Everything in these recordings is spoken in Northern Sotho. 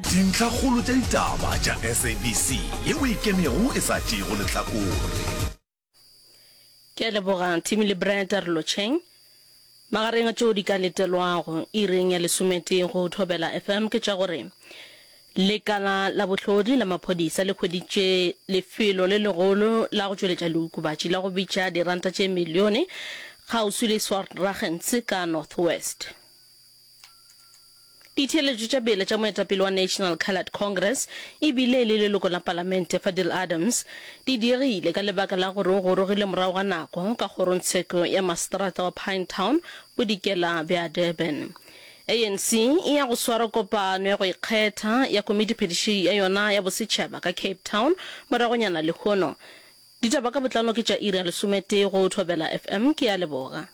Dintlhakgolo tša ditaba tša SABC yeo e kenego e sa tšeego lehlakore. Ke a leboga Timmy le Brad re lo tšheng. Magareng a tšeo di ka letelwago iring ya lesometee go Thobela FM ke tša gore lekala la bohlodi la maphodisa le hweditše lefelo le legolo la go tšweletša leokobatši la go bitša diranta tše milione kgauswi le Swartlagens ka North West. Ditheeletšo tša bele tša moetapele wa National Coloured Congress e bile le leloko la palamente Fadil Adams di diegile ka lebaka la gore o gorogile morago ga nako ka kgorongtsheko ya maseterata wa Pinetown bodikela bja Durban. ANC e ya go swara kopano ya go ikgetha ya komitiphediši ya yona ya bosetšhaba ka Cape Town moragonyana lehono. Ditaba ka botlalo ke tša iri ya lesometee go Thobela FM. Ke a leboga.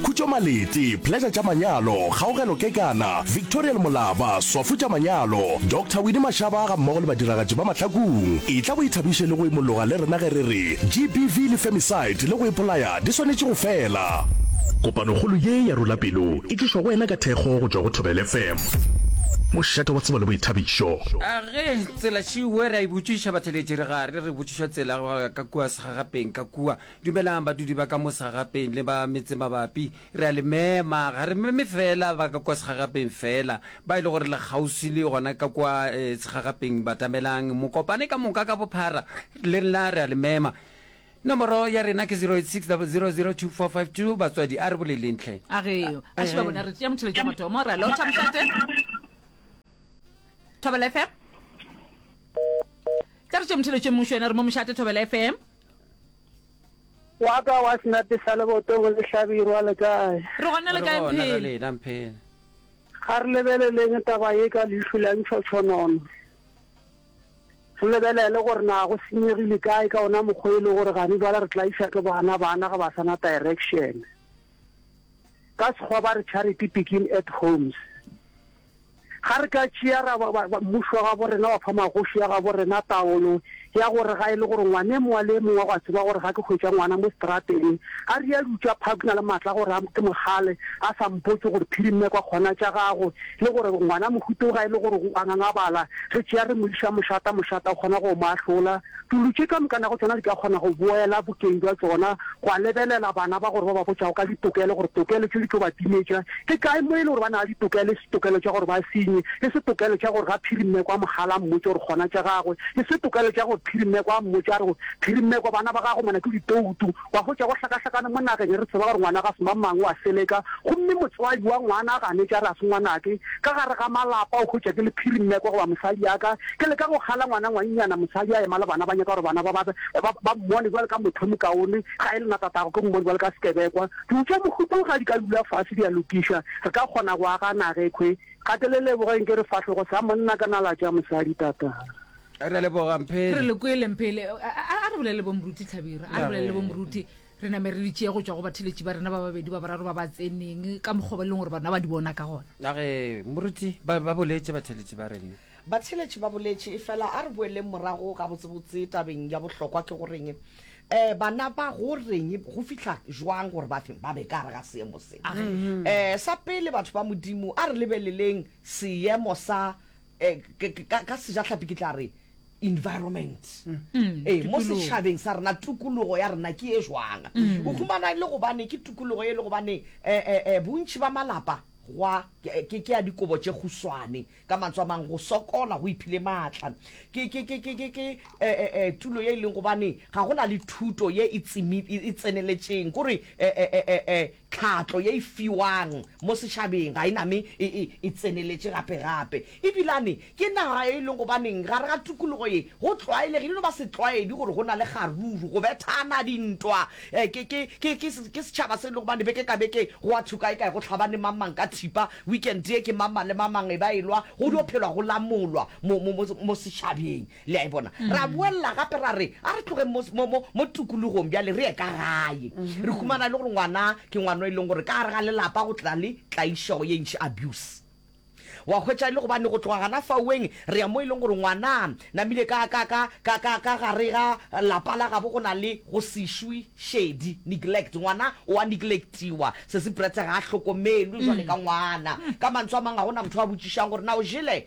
Khutšo Malete, Pleasure tša Manyalo, Kgaogelo Kekana, Victorial Molaba, Swafo tša Manyalo, Doctor Winnie Mashaba ga mmogo le badiragatši ba Mahlakung. Etla o ithabiše le go imologa le rena ge re re GBV le Femicide le go ipolaya di swanetše go fela. Kopanokgolo ye ya Rula Pelo e tlišwa go wena ka thekgo go tšwa go Thobela FM, mošate wa tsebo le boithabišo. A Ge tsela tšiwe re a e botšiša batheeletši re gare re botšišwa tsela go ya ka kua segagapeng ka kua. Dumelang badudi ba ka mo segagapeng le ba metsemabapi. Re a le mema, ga re meme feela ba ka kua segagapeng feela, ba e le gore le kgauswi le gona ka kua segagapeng. Batamelang mokopane ka moka ka bophara, le nna re a le mema. Nomoro ya rena ke 0860002452. Batswadi, a re boleleng hle. A re a šiba bona, re tšea motšheletšo wa mathomo, ra lotšha mošate. Thobela FM. Tla re tšea motšheletšo mmušo yena, re mo mošate Thobela FM. Wa ka wa senape sa leboto go le hlabirwa le kae? Re gona le kae Mphele? Ga re lebeleleng taba ye ka leihlo la ntšhotšhonono. Re lebelele gore na go senyegile kae ka ona mokgwa e le gore gane jwale re tla iša ke bana bana ge ba sa na direction. Ka Sekgowa ba re charity begin at homes. Ga re ka tšea ra ba, ba, ba, mmušo wa gabo rena wa fa magoši a gabo rena taolo ya gore ga e le gore ngwane mongwe le mongwe wa go a tseba gore ga ke hwetša ngwana mo strateng, a re ya dutša phag na le matla gore a ke mogale, a sa mpotse gore phirimme kwa kgona tša gago, le gore ngwana mohuteo ga e le gore o a ngangabala, re tšea re mo iša mošata, mošata o kgona go mo ahlola. Dulu tše ka moka nago tšona di ka kgona go boela bokeng bja tšona, gwa lebelela bana ba gore ba ba botšago ka ditokelo gore tokelo tše di tlo ba timetša ke kae mo e le gore ba na ditokelo, e se tokelo tša gore ba senye, e se tokelo tša gore ga Phirimmeko a mo gala a mmotše gore gona tša gagwe, e se tokelo tša gore Phirimmeko a mmotše a re, Phirimmeko, bana ba gago mona ke ditoutu. Wa hwetša go hlakahlakane mo nageng, re tseba gore ngwana ga se mamang, o a seleka, gomme motswadi wa ngwana a ganetše a re ga se ngwanake. Ka gare ga malapa, o hwetša ke le phiri mme kwa goba mosadi yaka. Ke leka go kgala ngwana ngwannyana, mosadi a ema le bana, ba nyaka gore bana ba ba ba mmone bjalo ka motho o mokaone. Ga e le nna tatago, ke mmone bjalo ka sekebekwa. Diutša mokhutlong ga di ka dula fase di a lokišwa, re ka kgona go aga naga ekhwe. Gatelelebogeng ke re fahlogo sa monna ka nala tša mosadi, tata. re leboga mphele re le kwele mphele a re bolele bo moruti tlhabira a re bolele bo moruti re name re ditšee go tswa go batheletši ba rena ba babedi ba boraro ba ba tseneng ka mokgwa ba e leng gore bana ba di bona ka gona age moruti ba boletse batheletši ba rena batheletši ba boletše e fela a re boeleng morago ga botsebotse tabeng ya bohlokwa ke goreng um eh, bana ba go reng go fitlha jwang gore ba ba be ka re ga seemo se um sa pele batho ba modimo a re lebeleleng seemo sa ka sejahlapi ke tla re environment ee mo setšhabeng sa rena tukulugo ya rena ke e jwang o humana e le gobane ke tukulugo e le gobane bontši ba malapa gwa ke ke ya dikobo tše khuswane ka mantswe a mang go sokola go iphile maatla ke ke ke ke ke ke tulo ye e leng gobane ga go na le thuto ye e tseneletšeng kore Tlhahlo ye e fiwang mo setšhabeng ga e name e, e, e tseneletše gape-gape. Ebilane, ke naga e e lego gobaneng gare ga tukologo ye, go tlwaelegile e no ba setlwaedi gore go na le kgaruru, go bethana dintwa. E, ke, ke, ke, ke, ke setšhaba se e lego gobane beke ka beke go a thukaekae, go hlabane mang-mang ka thipa, weekend ye ke mang-mang le mang-mang e ba e lwa, go dio phelwa go lamolwa mo, mo, mo, mo setšhabeng. Le a e bona? Ra boelela gape ra re, a re tlogeng mo, mo, mo, mo tokologong bjale, re ye ka gae. Re humana e le gore ngwana ke ngwana o e leng gore ka gare ga lelapa go tla le tlaišego ye ntši, abuse. Wa hwetša e le gobane go tloga gana fauweng re ya mo e leng gore ngwana namile ka, ka, ka, ka, ka, ka gare ga lapa la gabo go na le go se šwe šedi, neglect. Ngwana o a neglectiwa, Sesi Bretse ga a hlokomelwe jwale ka ngwana. Ka mantswe a mang ga go na motho a botšišang gore na o jele?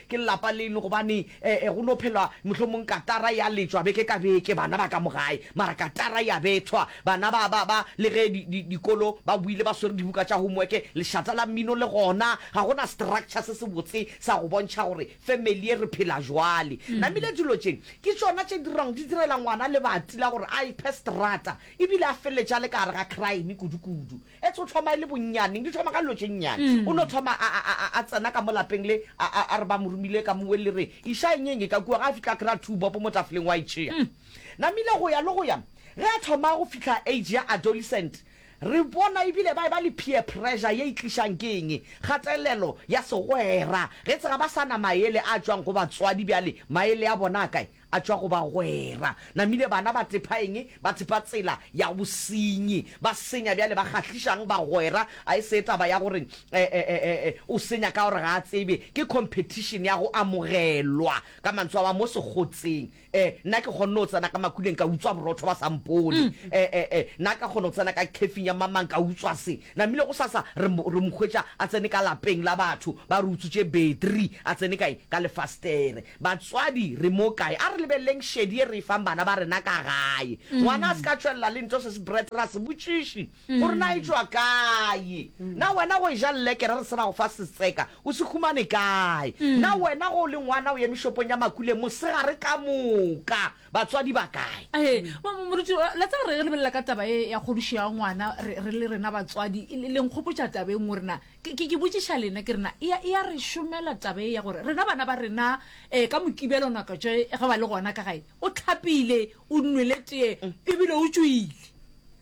Ke lelapa leno gobane go no phelwa mohlomong katara ya letšwa beke ka beke bana ba ka mo gae, mara katara ya bethwa. Bana ba, ba, ba, le ge di, di, dikolo ba boile ba swere dibuka tša homework, lešata la mmino le gona. Ga go na structure se sebotse sa go bontšha gore family ye re phela bjale. Namile dilo tše ke tšona tše dirago di direla ngwana lebati la gore a iphe strata ebile a feleletše a le ka gare ga crime kudu-kudu. Ets o thoma e le bonnyaneng, di thoma ka dilo tše nnyane. O no thoma a, a, a, a tsena ka mo lapeng le, a, a, a re ba mo romile ka mowe le re, Iša eng eng e ka kua, ge a fihla a kry-a two bopo mo tafoleng wa e tšea. Namile go ya le go ya, ge a thoma go fihla age ya adolescent, re bona e bile ba e ba le peer pressure ye e tlišang ke eng, kgatelelo ya segwera. Ge ets ga ba sa na maele a tšwang go batswadi bjale, maele a bona a kae? A tšwa go bagwera. Namile bana ba tepha eng? Ba tepha tsela ya bosenyi. Ba senya bjale ba kgahlišang bagwera. A e se taba ya gore o senya ka gore ga a tsebe. Ke competition ya go amogelwa. Ka mantswe a mang, mo Sekgotseng, nna ke kgonne go tsena ka makuleng ka utswa borotho ba sa mpone. Nna ka kgona go tsena ka khefing ya mamang ka utswa se. Namile gosasa re mo hwetša a tsene ka lapeng la batho, ba re utswitše battery, a tsene ka eng? Ka lefastere. Batswadi re mo kae? A re lebeleleng šedi ye re e fang bana ba rena ka gae. Ngwana a se ka tšwelela le nto se se bret ra se botšiši gore na e tšwa kae. Na wena go e ja llekere re se ra go fa setseka o se humane kae? Na wena go o le ngwana o eme shopong ya Makuleng mosegare ka moka batswadi ba kae? He, moruti, la tseba re lebelela ka taba ye ya kgodišo ya ngwana re le rena batswadi, le nkgopotša taba e nngwe gore na Ke, ke, ke botšiša lena, ke rena, e, e a re šomela taba e ya gore rena bana ba rena um ka Mokibelo ngaka tše ge ba le gona ka gae, o tlhapile, o nwele tee, ebile o tšwile.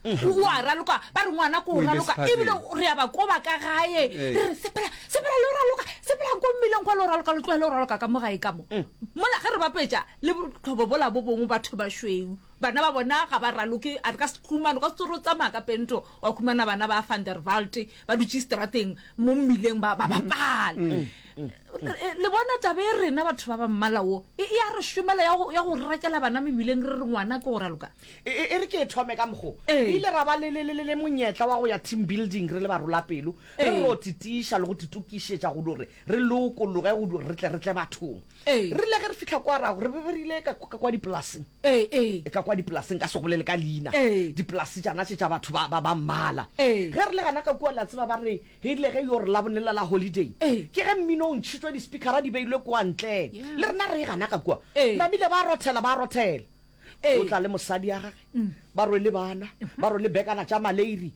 O, o a raloka, ba re ngwana ko o raloka, ebile re ya ba koba ka gae, re re, sepela, sepela le o raloka, sepelang ko mmileng kwa le o raloka, lo tlohele o raloka ka mo gae ka mo. Mola ge re bapetša le botlhobo bola bo bongwe batho ba šweu. Bana ba bona ga ba raloke, a re ka sehlumana o ka se tsore o tsamaya ka pento wa khumana bana ba Van der Walt ba dutše strateng mo mmileng ba bapala. Le bona taba e rena batho ba ba mmala wo e ya re šomela ya go ya go rakela bana mebileng re re ngwana ke go raloka. E re ke e thome ka mokgo re ile ra ba le le le le monyetla wa go ya team building re le barolapelo re ro titiša le go titokišetša go dore re lokologe go dore re tle re tle bathong. Re rile ge re fihla kwa ra go re be re ile ka kwa dipolaseng e ka kwa dipolase nka se bolele ka leina dipolase tšana tše tša batho ba ba ba mmala ge re le gana ka kua la tseba ba re ge ile ge yo re la bonela la holiday ke ge mmino o ntšhitšwe di speakera di beilwe kwa ntle le rena re gana ka kua ba bile ba rothela ba rothela o tla le mosadi ya gage ba rwele bana ba rwele bekana tša maleiri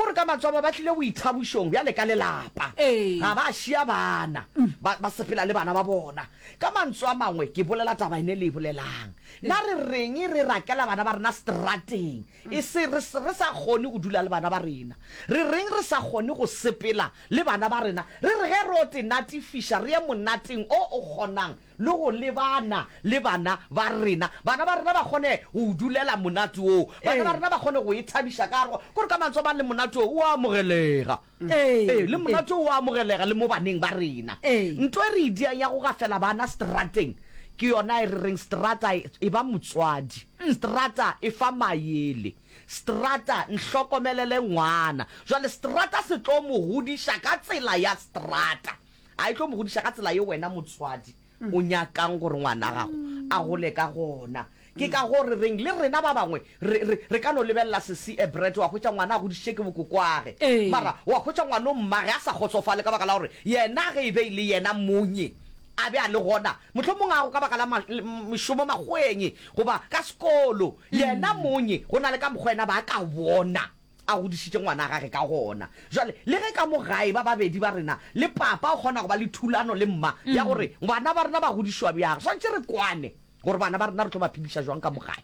O re ka matswalo ba tlile boithabošong bjale ka lelapa. Ga ba šia bana, ba, ba sepela le bana ba bona. Ka mantswe a mangwe, ke bolela taba ene le e bolelang. Na re reng re rakela bana ba rena strateng, e se re, re sa kgone go dula le bana ba rena? Re reng re sa kgone go sepela le bana ba rena? Re re ge re o te natifiša re ye monateng o o kgonang le go lebana le bana ba rena, bana ba rena ba kgone go o dulela monate woo, bana ba rena ba kgone go e thabiša ka go, gore ka mantswe a mang le monate woo o a amogelega. Ee, le monate woo o a amogelega le mo baneng ba rena. Nto e re e diang ya go gafela bana seterateng ke yona e re reng seterata e ba motswadi, seterata e fa maele, seterata nhlokomelele ngwana. Jwale seterata se tlo mo godiša ka tsela ya seterata. A e tlo mo godiša ka tsela yeo wena motswadi o nyakang gore ngwana gago a gole ka gona. Ke ka goo re reng le rena ba bangwe re, re, re ka no lebelela Sesi Ebret, wa hwetša ngwana a godišitše ke bokokoage, Ee. mara wa hwetša ngwanommage a sa kgotsofale ka baka la gore yena ge e be e le yena monye a be a le gona, mohlomong a go ka baka la ma, le, mešomo makgweng goba ka sekolo, yena monye go na le ka mokgwa yena ba ka bona. A godišitše ngwana wa gage ka gona. Bjale, le ge ka mo gae ba babedi ba rena le papa o kgona go ba le thulano le mma ya gore bana ba rena ba godišwa bjang, re swanetše re kwane gore bana ba rena re tlo ba phediša bjang ka mo gae.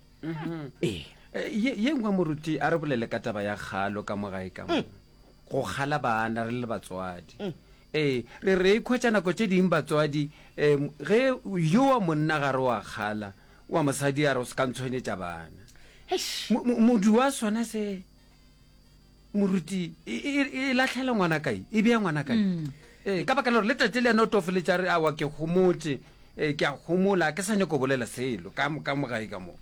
Ee. Eh, Ye ye nngwe, moruti, a re bolele ka taba ya kgalo ka mo gae ka mo. Go kgala bana re le batswadi. Ee, re re ikhwetša nako tše ding batswadi, em, ge yowa monna gare wa kgala, Wa mosadi a re o se ka ntshwenyetša bana. Eish! Modu wa sona se, moruti, e, e, e, e lahlela ngwana kae? E bea ngwana kae? Mm. Ee, ka baka la gore le tate le yena o tofeletša re awa ke gomotše, ee, ke a gomola, ke sa nyako bolela selo, ka, ka mo gae ka moo.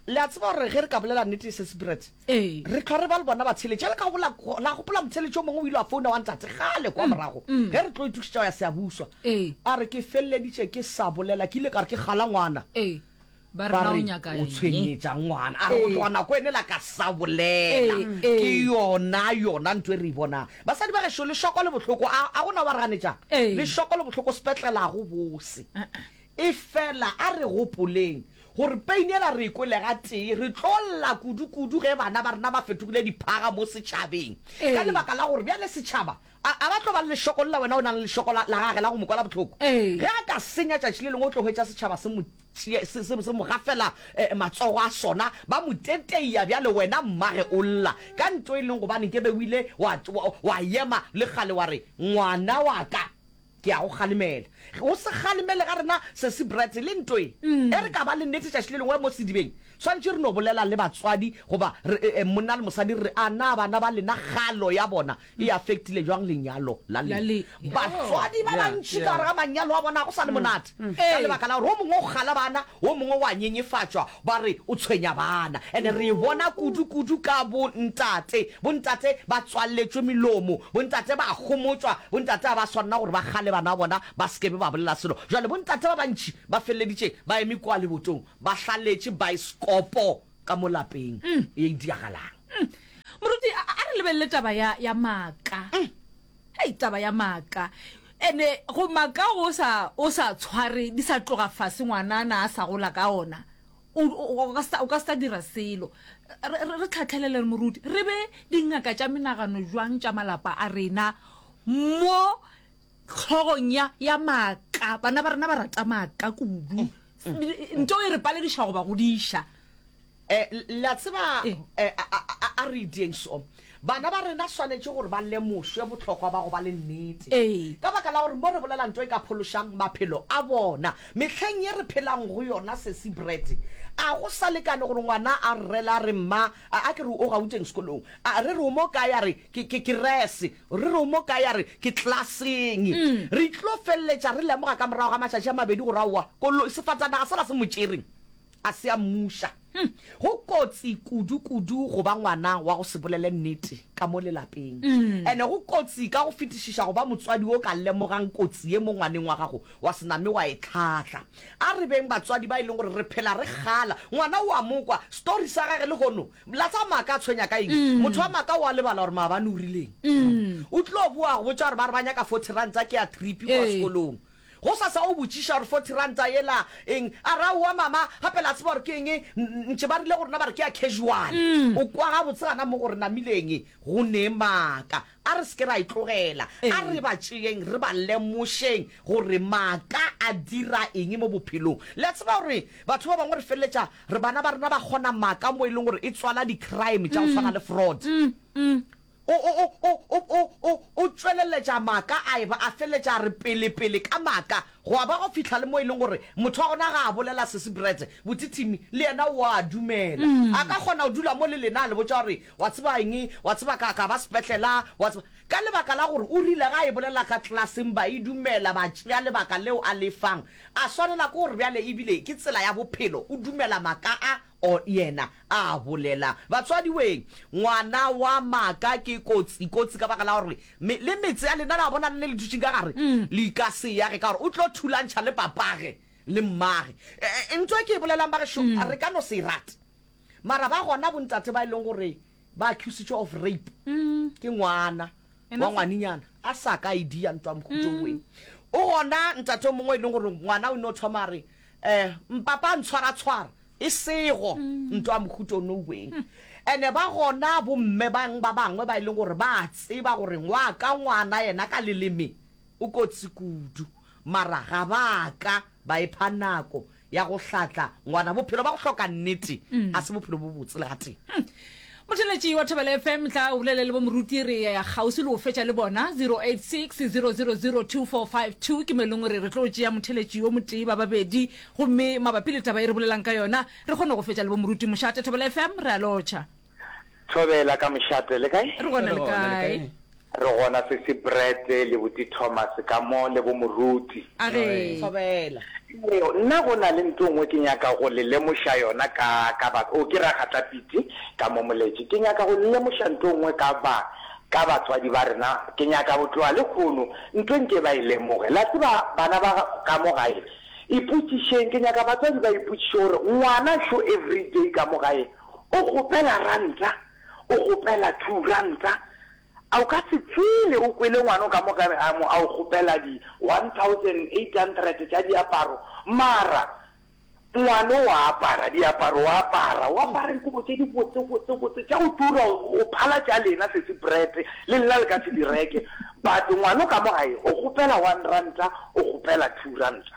Le a tseba gore ge re ka bolela nnete, Sesi Brett, Ee. re hlwa re ba le bona batsheletši a le ka gola la gopola motsheletši o mongwe o ile wa founa wa ntate gale kwa morago ge re tlo itukišetša go ya seabuswa Ee. a re ke feleleditše ke sa bolela ke ile ka re ke gala ngwana Ee. ba re ba na o re nyaka o eng? tshwenyetša ngwana a re go tloga nako ene la ka sa bolela Ee, ee. ke yona yona ntho e re e bonang basadi ba gešo lešoko le bohloko a a gona wa re ganetšang Ee. lešoko le bohloko sepetlela go bose Efela a re gopoleng gore peinela re e kwele gatee. Re tlo lla kudukudu ge bana ba rena ba fetogile diphaga mo setšhabeng ka lebaka la gore bjale setšhaba a, a ba tlo ba le lešokol la wena o na le lešoko la, la gage la go mo kwala bohloko. Ge a ka senya tšatši le lengwe o tlo hwetša setšhaba se mo tšea, se, se, se mo gafela eh, matsogo a sona, ba mo teteia. Bjale wena mmage o lla ka nto e leng gobane ke be o ile wa, wa, wa ema le kgale wa re, Ngwana wa ka! Ke a go kgalemela. O se kgalemele ga rena, Sesi Bratz. Le nto ye, ge re ka ba le nnete tšatši le lengwe mo sedibeng, swanetše re no bolela le batswadi goba re, monna le mosadi, re re, A na bana ba lena kgalo ya bona e affectile bjang lenyalo la lena? Batswadi ba bantši ka gare ga manyalo a bona go sa le monate ka lebaka la gore wo mongwe o kgala bana, wo mongwe o a nyenyefatšwa, Ba re o tshwenya bana and re e bona kudu kudu ka bo ntate. Bo ntate ba tswaletšwe melomo, bo ntate ba homotšwa, bo ntate ga ba swanela gore ba gale bana ba bona ba se ke be ba bolela selo. Jwale bo ntate ba bantši ba feleleditše ba eme kwa lebotong ba hlaletše baesekopo ka mo lapeng ye e diragalang. Moruti, a re lebelele taba ya, ya maaka. Hei taba ya maaka ene go maka o sa o sa tshware di sa tloga fase ngwanana a sa gola ka ona o ka sa dira selo re tlhatlhelele re moruti re be dingaka tša menagano jwang tša malapa a rena mo tlhogong ya ya maaka bana ba rena ba rata maaka kudu nto e re palediša go ba godiša Eh, le a tseba, Eng? eh, a, a, a, a re itieng so. Bana ba rena swanetše gore ba lemošwe bohlokwa ba go ba le nnete. Ee. Ka baka la gore mo re bolela nto e ka phološang maphelo a bona. Mehleng ye re phelang go yona, Sesi Brett, a go sa lekane gore ngwana a rrele a re, Mma, a, a ke re o gauteng sekolong? A re re o mo kae? A re ke, ke kerese. Re re o mo kae? A re ke klaseng. Re tlo feleletša re lemoga ka morago ga matšatši a mabedi gore aowa, koloi, sefatanaga sela se mo tšereng. a se a mmuša. Go kotsi kudu-kudu go ba ngwana wa go se bolele nnete ka mo lelapeng. And go kotsi ka go fetišiša go ba motswadi o ka lemogang kotsi ye mo ngwaneng wa gago wa se name wa e tlhahla. A re beng batswadi ba e leng gore re phela re kgala. Ngwana o a mo kwa story sa gage lehono la tsa maaka a tshwenya ka eng? Motho wa maaka o a lebala gore maabane o rileng. O tlo boa go botša gore ba re ba nyaka forty ranta ke ya trip go ya sekolong. Gosasa o botšiša gore forty ranta yela eng, a re aowa mama gape la tseba gore ke eng, ntše ba rile go rena ba re ke ya casual. O kwa gabotse gana mo go re namileng go nee maaka, a re se ke ra e tlogela, a re ba tšeeng re ba lemošeng gore maaka a dira eng mo bophelong. Le a tseba gore batho ba bangwe re feleletša re bana ba rena ba kgona maaka mo e leng gore e tswala di crime tša go swana le fraud. O, o, o, o, o, o, o tšweleletša maaka a eba a feletša a re pele, pele ka maaka, gwa ba go fihla le mo e leng gore motho wa gona ga a bolela Sesi Brett, botithimi, le yena o a dumela. A ka kgona go dula mo le lena a le botša gore, Wa tseba eng, wa tseba ka, ka ba sepetlela, wa tseba. Ka lebaka la gore o rile ga e bolela ka klaseng ba e dumela, ba tšea lebaka leo a le fang. A swanela ke gore bjale e bile ke tsela ya bophelo, o dumela maaka a. O yena a bolela, Batswadiwee, ngwana wa maaka ke kotsi, kotsi ka baka la gore me, le metse ya lena, le a bona, le le le dutšeng ka gare, le ka se yage, ka gore o tlo thulantšha le papage le mmage. E, e, ntwa e ke e bolelang, bagešo, re ka no se e rate, mara ba gona bontate ba e leng gore ba accusitšwe of rape ke ngwana wa ngwaninyana a sa ka id ya ntwa mokhutoeng o gona ntate o mongwe e leng gore ngwana o ne o thoma re um mpapa a ntshwaratshwara e sego nto a mohuto no weng ene ba gona bomme bang ba bangwe ba e leng gore ba tseba gore ngwa ka ngwana yena ka leleme o kotsi kudu Mara ga ba ka ba epha nako ya go hlatla ngwana. Bophelo ba go hloka nnete ga se bophelo bo botse le gatee. Motheletši wa Thobela FM, tla o bolele le bomoruti, re kgauswi le go fetša le bona. 0860002452 ke mo e leng gore re tlo tšea motheletši yo motee ba babedi, gomme mabapi le taba e re bolelang ka yona re kgone go fetša le bomoruti mošate. Thobela FM, re a lotšha. Thobela ka mošate le kae? Re gona le kae? Re gona Sesi Brett le Buti Thomas ka mo le bo Moruti. A re. Thobela. Nna go na le nto ngwe ke nyaka go le lemoša yona ka ka ba o ke Ragata Piti ka mo moletše ke nyaka go le lemoša nto ngwe ka ba ka batswadi ba rena ke nyaka go tloga le kgono nto nke ba e lemoge la tseba bana ba ka mo gae ipotšišeng ke nyaka batswadi ba ipotšiše gore ngwana šo everyday ka mo gae O kgopela ranta, o kgopela two ranta, a o ka se tswile o kwele ngwana o ka mo kare a mo a o kgopela di one thousand eight hundred tša diaparo, mara ngwano wa apara diaparo wa apara, o apara dikobo tše di botse botse botse tša go tura, o phala tša lena sesi bread le lena le ka se di reke, but ngwana o ka mo gae o kgopela one ranta, o kgopela two ranta.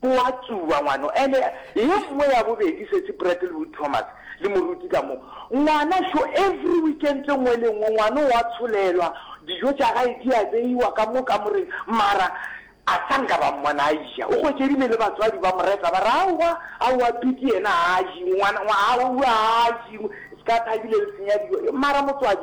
Go a tsuba, ngwano. Ene ye nngwe ya bobedi, Sesi Brattlewood Thomas le moruti ka mo. Ngwana šo, every weekend e nngwe le nngwe, ngwano wa tsholelwa, dijo tša gae di a beiwa ka mo kamoreng, mara a sa nka ba mmona a eja. O hwetšedile le batswadi ba mo reta, ba re, Aowa, aowa, Piti yena haa, jing, ngwana, aowa, haa, jing, se ka Thabile le senya dijo. Mara motswadi,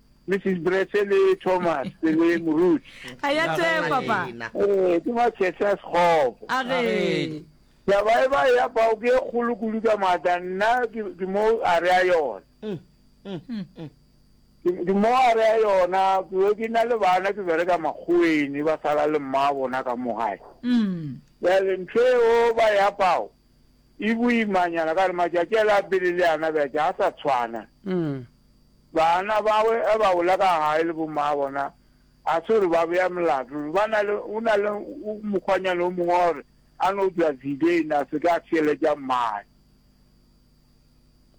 Mrs. Brese le Thomas le Moruti. A ya tse papa. Eh, ke ba Chesa Sekgopo. A re. Ya ba e ba ya bao ke kgolo kudu ka mata nna ke mo a re a yona. Mm, mm, mm. Ke mo a re a yona ke be ke na le bana ke bereka makgoweni ba sala le mma bona ka mo gae. Mm. Ya le ntho eo ba ya bao. E boimanyana ka gore matšatši a le a pele le ana bja tša a sa tshwana. Bana bawe a ba ola ka gae le bommaa bona a se gore ba bea molato. Ba na le o na le mokgwanyana o mongwe wa gore a no tšwa Zidane a se ka a theeletša mmae.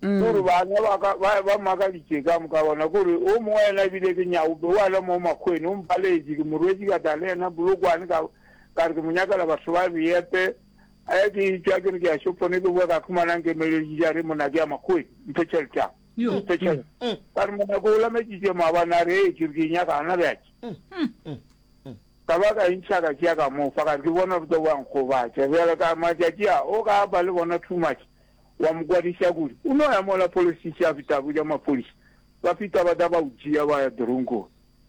Ke gore bana ba ka ba ba makaditše ka moka bona ke gore o mongwe yena ebile ke nyaope wa le mo makgweni o mpaleetše ke morwetše ka tla le yena Polokwane ka ka re ke mo nyakela batho ba beepe. A ya ke tša ke re ke a shopone ke boa ka khumanang ke emeletše ja re mona ke ya makgoe mphe tšhelete ya mphe tšhelete ka re mona ko olametšitše maabane a re e ke re ke nyaka gana bjatše ka ba ka ntšha ka tšea ka mo fa ka re ke bona ruta wa nkgobatša bjale ka matšatši a o ka ba le bona too much wa mo kwadiša kudu o no ya mola polisi tša fita botša maphodisa ba fita ba ta ba o tšea ba ya dronkong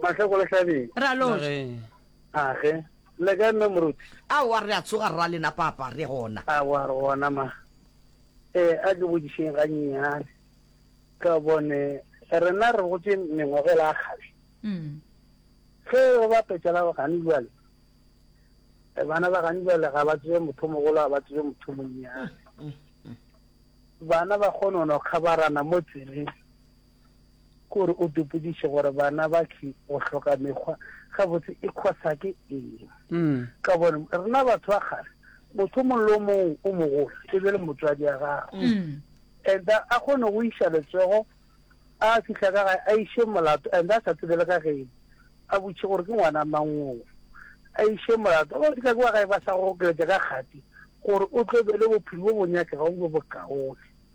Mahle go le hlabeng. Re a loša. Age. Le kae mme moruti? Aowa re a tsoga rra lena papa re gona. Aowa re gona ma. Eh a ke bodišeng ga nnyane. Ka bone rena re gotse mengwaga la kgale. Mm. Ge go ba petšala ba gane jwale. Eh, bana ba gane jwale ga ba tsebe motho mogolo ga ba tsebe motho monnyane. Mm, mm, mm. Bana ba kgonono kgabarana mo tseleng. Kore o dopodiše gore bana ba ky go hloka mekgwa gabotse e khosa ke eng? Ka gobane rena batho ba kgale motho mongwe le o mongwe o mogolo e be le motswadi ya gagwe and a kgone go iša letsogo a fihla ka gae a iše molato and a sa tsebe le ka gene a botše gore ke ngwana mangoo a iše molato o fihla ke wa gae ba sa go okeletša ka kgati gore o tlo be le bophelo bo bo nyakega go bo bokaone.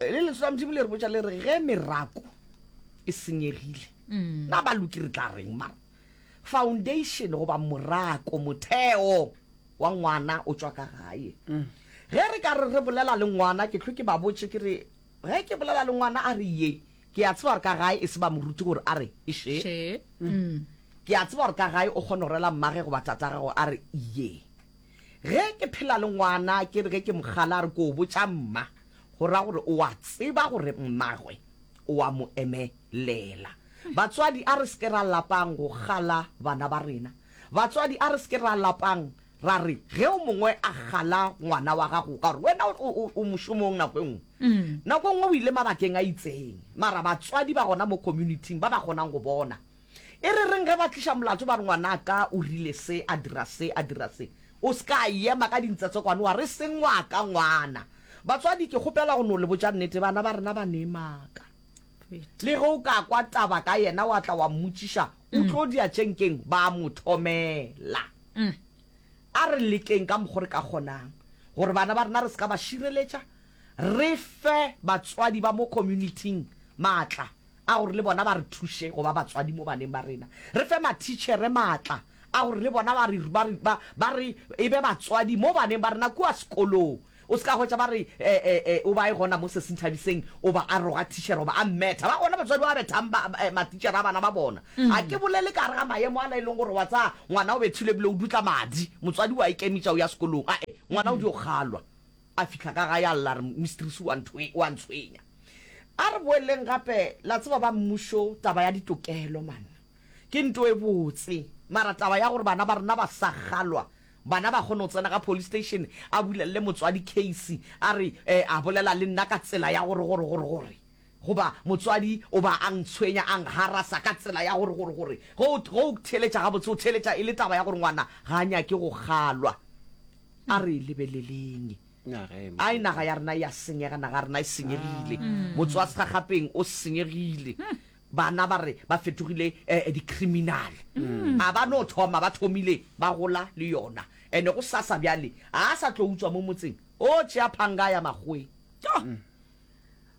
le lentswe la modimo le re botša le re ge merako e senyegile mm. na ba loki re tla reng mara foundation goba morako motheo wa ngwana o tswa ka gae mm. ge re ka re re bolela le ngwana ke tlho ke ba botse ke re ge ke bolela le ngwana a re ye ke a tseba gore ka gae e se ba moruti gore a re e she mm. ke a tseba gore ka gae o kgona go rela mmage goba tata gago a re ye Ge ke phela le ngwana ke re ge ke mo gala a re ke o botša mma, go ra gore o a tseba gore mmagwe o a mo emelela. Batswadi a re se ke ra lapang go gala bana ba rena. Batswadi a re se ke ra lapang ra re ge o mongwe a gala ngwana wa gago ka gore wena o mošomong nako e nngwe. Mm. Nako e nngwe o ile mabakeng a itseng mara batswadi ba gona mo communityng ba ba kgonang go bona. E re reng ge ba tliša molato ba re ngwanaka o rile se, a dira se, a dira se? O se ka ema ka dintsetsekwane wa re e seng wa ka ngwana. Batswadi, ke kgopela go no le botša nnete, bana ba rena ba ne maka. Le ge o ka kwa taba ka yena wa tla wa mmotšiša o tlo diatšenkeng, ba a mo thomela. A re lekeng ka mokgo re ka kgonang gore bana ba rena re se ka ba šireletša, re fe batswadi ba mo community-ing maatla a gore le bona ba re thuše go ba batswadi mo baneng ba rena. Re fe mathitšhere matla a gore le bona ba re, ba re, ba, ba re e be batswadi mo baneng ba rena kua sekolong. O se ka hwetša ba re, e, e, e, o ba e gona mo Sesinthabiseng, o ba a roga thitšhere goba a mmetha. Ba gona batswadi ba ba bethang ba, e, mathitšhere a bana ba bona. Ga ke bolele ka gare ga maemo ala e leng gore wa tsaya ngwana o bethilwe ebile o dutla madi, motswadi o a ikemetša o ya sekolong. A-e, ngwana o dio kgalwa. A fihla ka gae a lla, a re, Mistrese, o a nthwe, o a ntshwenya. A re boeleleng gape, la tseba ba mmušo, taba ya ditokelo, man, ke nto e botse. Mara taba ya gore bana ba rena ba sa kgalwa, bana ba kgone go tsena ka police station, a bulelele motswadi case, a re, eh, a bolela le nna ka tsela ya gore, gore, gore, gore. Goba motswadi o ba a ntshwenya, a ngharasa ka tsela ya gore, gore, gore, ge o, ge o theeletša gabotse, o theeletša e le taba ya gore ngwana ga a nyake go kgalwa. A re e lebeleleng. Naga e Ai, naga ya rena e a senyega, naga ya rena e senyegile. Motswasegagapeng o senyegile. Bana ba re ba fetogile eh, di-criminal. A ba no thoma, ba thomile ba gola le yona. Ene go sasa bjale, ga a sa tlo utswa mo motseng, o tšea phanga a ya makgoweng. Tjo!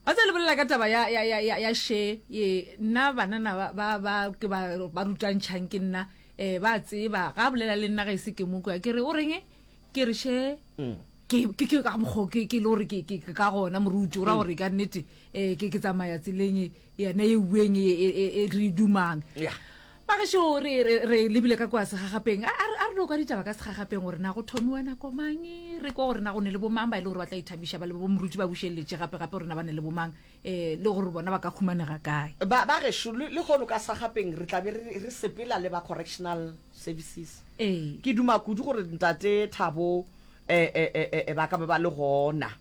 Wa tseba le bolela ka taba ya, ya, ya, ya, ya she ye nna banana ba, ba, ba ke ba, ba rutantšhang ke nna eh ba tseba ga bolela le nna ga ise ke mo kwa ke re o reng ke re she mm. ke ke ke ka mokgo ke ke le gore ke ke ka gona moruti o ra gore ka nnete eh ke ke tsamaya tseleng yena ye ueng e, e, e, e re dumang yeah. magešo re, re, re lebile ka kwa segagapeng a a re a re no kwa ditaba ka segagapeng gore na go thomiwa nako mang re kwa gore na go ne le bomang ba e le gore ba tla ithabiša ba le bo moruti ba bušeletše gape gape gore na ba ne le bomang um le gore bona ba ka humanega kae ba ba gešo le le gono ka sagapeng re tlabe re re sepela le ba correctional services ee ke duma kudu gore ntate thabo um ba ka ba ba le gona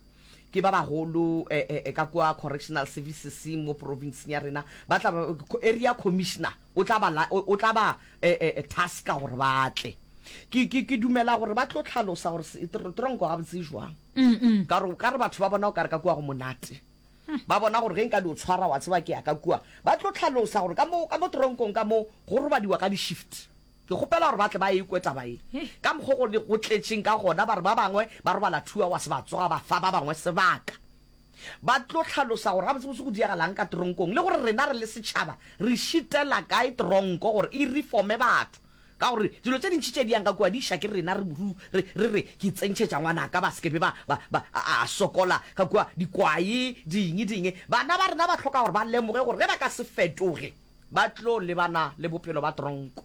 ke ba bagolo eh, eh, eh, ka kwa correctional services mo provinceng ya rena ba tla ba- co- area commissioner o tla ba la- o o tla ba eh, eh, eh, taska gore ba tle ke ke- ke dumela gore ba tlo tlhalosa gore se- tr- tronko gabotse e jwang ka gore ka re batho ba bona o kare ka kua go monate ba bona gore ge nka di o tshwara wa tseba ke ya ka kua ba tlo tlhalosa gore ka mo ka mo tronkong ka mo go robadiwa ka di-shift Ke kgopela gore ba tle ba e kwe taba ye, ka mokgwa go ne go tletšeng ka gona. Ba re ba bangwe ba robala two hours ba tsoga, ba fa ba bangwe sebaka ba tlo hlalosa gore gabotsebotse go diregalang ka teronkong le gore rena re le setšhaba re šitela kae teronko gore e reforme batho ka gore dilo tše dintši tše di yang ka kua di ša ke rena re buru re re re ke tsentšhetša ngwanaka ba seke be ba ba ba a sokola ka kua dikwae ding ding bana ba rena ba hloka gore ba lemoge gore ge ba ka se fetoge ba tlo lebana le bophelo ba tronko.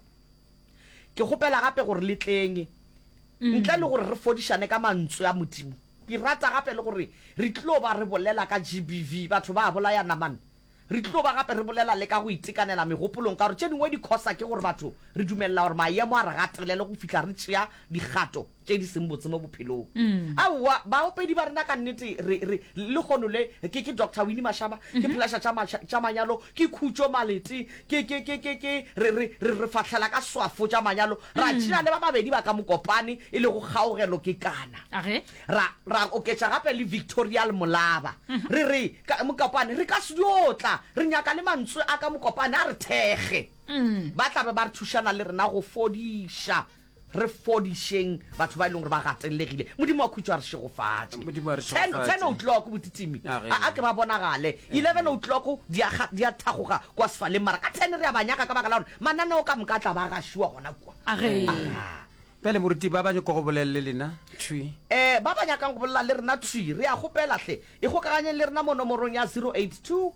Ke kgopela gape gore le tleng, ntle le gore re fodišane ka Mantswe a Modimo. Ke rata gape le gore re tlo ba re bolela ka GBV, batho ba bolaya namane. Re tlo ba gape re bolela le ka go itekanela megopolong, ka gore tše dingwe di khosa ke gore batho re dumelela gore mayemo a re gatelele go fihla re tšea dikgato. tše di seng botse mo bophelong. Aowa, baopedi ba rena ka nnete re, re, lehono le, ke, ke Doctor Winnie Mashaba, ke Pleasure tša ma, tša manyalo, ke Khutšo Malete, ke, ke, ke, ke, ke, re, re, re, re fahlela ka swafo tša manyalo, ra tšea le ba babedi ba ka Mokopane, e lego Kgaogelo Kekana. A ge? Ra, ra oketša gape le Victorial Molaba. Re re, ka, Mokopane, re ka se dio tla, re nyaka le mantswe a ka Mokopane a re thekge. Ba tla be ba re thušana le rena go fodiša. Re fodišeng batho ba e leng gore ba gatelegile. Modimo wa khutšo a re šegofatše. Modimo a re Ten, ten šegofatše. outloko botitimi. A ge. A a ke ba bonagale. Eleven outloko di a ga- di a thagoga kwa sefaleng mara ka ten re a ba nyaka ka baka la gore mananeo ka moka a tla ba a gašiwa gona kua. A ge. Aha. Bjale moruti ba ba nyoko go bolelele lena thwi. Um ba ba nyakang go bolela le rena thwi re a kgopela hle ikgokaganyeng le rena mo nomorong ya 082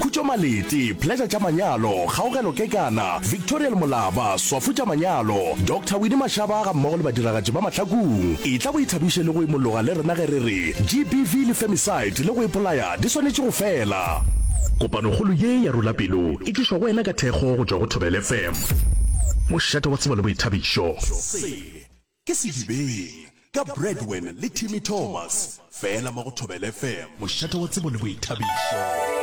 Khutšo Maleti, Pleasure tša Manyalo, Kgaogelo Kekana, Victorial Molaba, Swafo tša Manyalo, Doctor Winnie Mashaba ga mmogo le badiragatši ba Mahlakung. Etla o ithabiše le go imologa le rena ge re re GBV le femicide le go ipolaya di swanetše go fela. Kopanokgolo ye ya Rula Pelo e tlišwa go wena ka thekgo go tšwa go Thobela FM. Mošate wa tsebo le boithabišo. Se ke Sedibeng ka Bradwen le Timmy Thomas, fela mo go Thobela FM. Mošate wa tsebo le boithabišo.